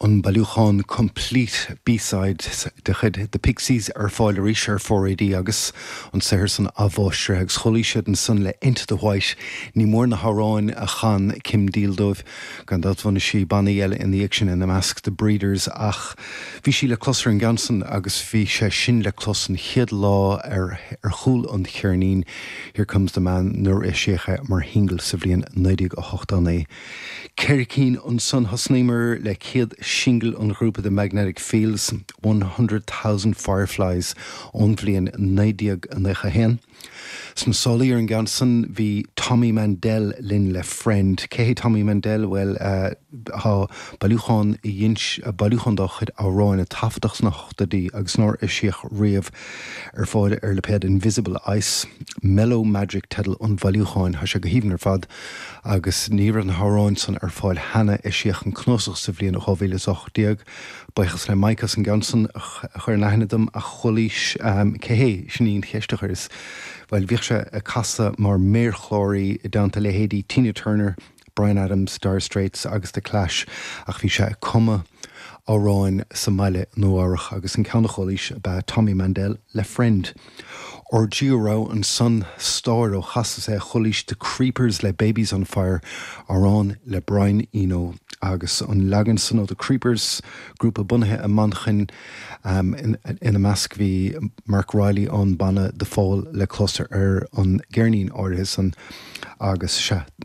An bailiúchán Complete B-sides de chuid The Pixies ar fáil arís ar Four AD agus an saothar san athmháistrithe agus chualaís iad ansan le Into The White. Ní mór na hamhráin a chan Kim Deal dóibh. Gan dabht bhunaigh sí bannaí eile ina dhiaidh sin, ina measc The Breeders ach bhí sí le clos ar an gceann san agus bhí sé sin le clos an chéad lá ar chúl an cheirnín Here Comes Your Man nuair a eisíodh é mar shingil sa bhliain 1989. Ceithre cinn ansan thosnaíomar le céad singil an ghrúpa The Magnetic Fields, One Hundred Thousand Fireflies ón bhliain 1991. Sna sálaí ar an gceann san bhí Tommy Mandel linn le Friend. Cé hé Tommy Mandel? Bhuel, tá bailiúchán bailiúchán dá chuid, amhráin a taifeadadh sna hochtóidí agus nár eisíodh riamh ar fáil ar lipéad Invisible Ice. Mellow Magic teideal an bhailiúcháin. Tá sé go haoibhinn ar fad. Agus ní raibh na hamhráin san ar fáil cheana, eisíodh an cnuasach sa bhliain 2018. Buíochas le Mike as an gceann san a chur in aithne dom, a chualaís. Cé hé? Sin í an cheist a chuireas. Bhuel, bhíodh sé ag casadh mar méarchláraí i dteannta leithéidí Tina Turner, Bryan Adams, Dire Straits agus The Clash, ach bhí sé ag cumadh amhráin sa mbaile i Nua-Eabhrac agus an ceann a chualaís ab ea Tommy Mandel le Friend. Ar dtús a raibh ansan stáir ó chasas é Chulaís The Creepers le Baby's on Fire, amhrán le Brian Eno agus an leagan san ó The Creepers, grúpa bunaithe i Manchain. Ina measc bhí Marc Riley ón banna The Fall a chloistear ar an gceirnín áirithe san agus sea,